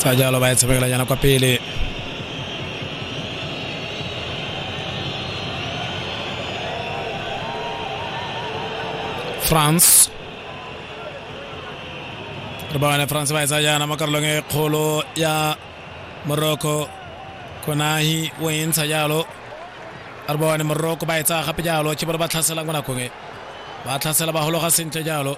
sa jalo ba e tshamekela yana kwa pele france re ba bane france ba e tsaya yana mo karolong e kgolo ya morocco konahi o e ntsha jalo re ba bane morocco ba e tsaya gape jalo ke bone ba tlhaselang mo nakong e ba tlhasela ba hologa sentle jalo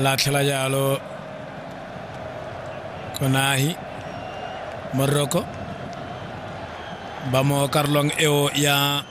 latlhela jalo konahi moroko ba mo karolong eo ya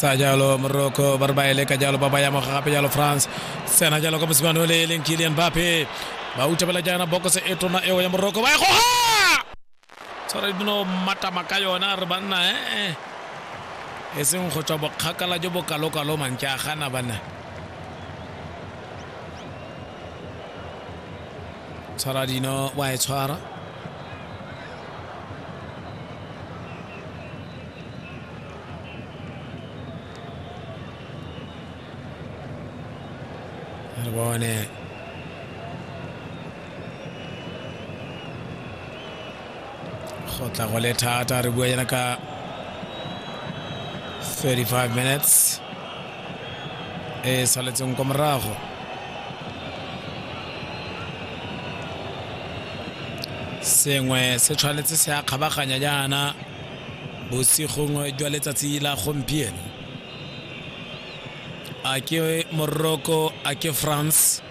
sa jalo moroko ba re ba ele ka jalo ba ba ya moga gape jalo france sena jalo ka mosimane o le eleng kilian bape ba utabela jaana bokoso e tona eo ya moroko ba e goga tshwara dino matama ka yona re banna ee e seng go tswa bokgakala jo bokalokalo mantse a gana banna tshwara dino wa e tshwara re bone go tla go le thata re bua yana ka 35 minutes e saletseng kwa morago sengwe se tshwanetse se a kgabaganya jaana bosigong jwa letsatsi la gompieno a ke morocco a ke france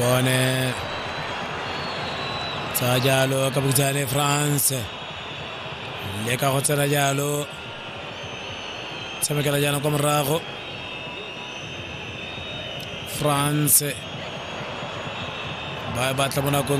bone tsa jalo ka bokitsane france le ka go tsena jalo tshamekela jaana kwa morago france ba e batla mo nakong